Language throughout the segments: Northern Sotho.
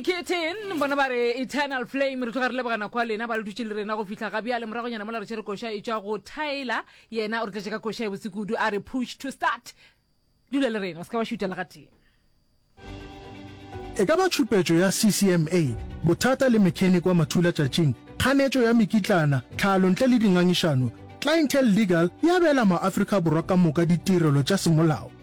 kitten bona ba re eternal flame re tloga re lebogana kwa lena ba le dutse le rena go fitlha ga bjale moragonyana mola re tšhere koša e tswa go tyler yena o re tletše ka koša e bosekudu a re push to start dula le rena o se ka wa šuta le gatee e ka ba tšhupetšo ya ccma bothata le mechanic wa mathula tšatšing kganetšo ya mekitlana tlhalo ntle le dingangišano clientele legal e abela maafrika borwa ka moka ditirelo tša semolao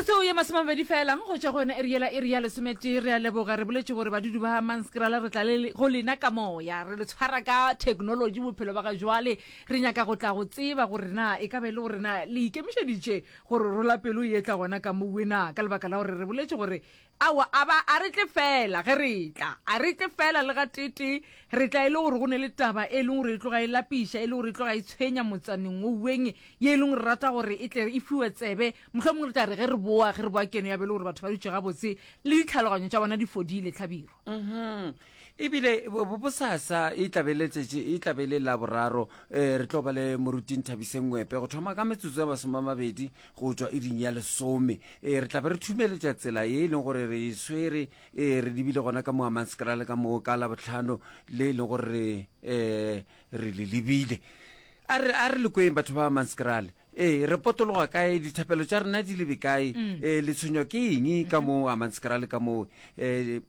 metsotso ye masomabedi felang go tšwa go yone e re yela e re ya lesometee re a leboga re boletse gore badudu ba manskrala re tla le go lena ka moya re le tshwara ka thekenoloji bophelo ba ga jwale re nyaka go tla go tseba gore na e ka be e le gore na le ikemišeditše gore rola pelo e etla gona ka mowena ka lebaka la gore re boletse gore Aowa, a ba, a re tle feela ge re etla. A re tle feela le gateetee. Re tla e le gore go ne le taba e leng gore e tloga e lapiša, e le gore e tloga e tshwenya motsaneng wo weng, ye e leng gore re rata gore e tle e fiwe tsebe. Mohlomongwe re tla re ge re boa, ge re boa keno ya be e le gore batho ba dutše gabotse, le ditlhaloganyo tša bona di fodile, Hlabirwa. E bile bosasa e tla be le letšatši e tla be le la boraro eh, re tlo ba le moruting Thabiseng Ngwepe go thoma ka metsotso ya masome a mabedi go tšwa iring ya lesome eh, re tla be re thumeletša tsela ye e leng gore re e swere eh, re lebile gona ka moamanskra le ka moo ka la botlhano le e leng gore re eh, re le lebile a re a re le kweng batho ba manskrale ee re potologa kae dithapelo tša rena di lebe kae ee le tshwenywa ke eng ka moo a manskrale ka moo um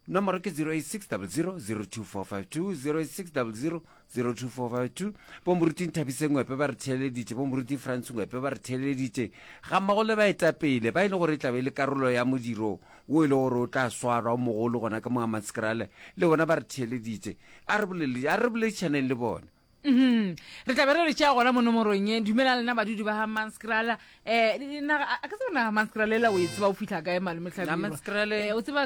Nomoro ke 0860002452, 0860002452. Bo Moruti Nthabise Ngwepe ba re theeleditše, bo Moruti Frans Ngwepe ba re theeleditše, gammogo le baetapele ba e le gore e tlabe e le karolo ya modiro wo e le gore o tla swarwa o mogolo gona ka Moamatskrale, le bona ba re theeleditše. A re bolele, a re boledišaneng le bona. Uhum. Re tlabe re re tšea gona mo nomorong ye. Dumelang lena badudi ba ga Manskrale. Eh, naga, a ka tseba naga Manskrale ela o e tseba o fihla kae malome Hlabirwa? Manskrale. Eh, o tseba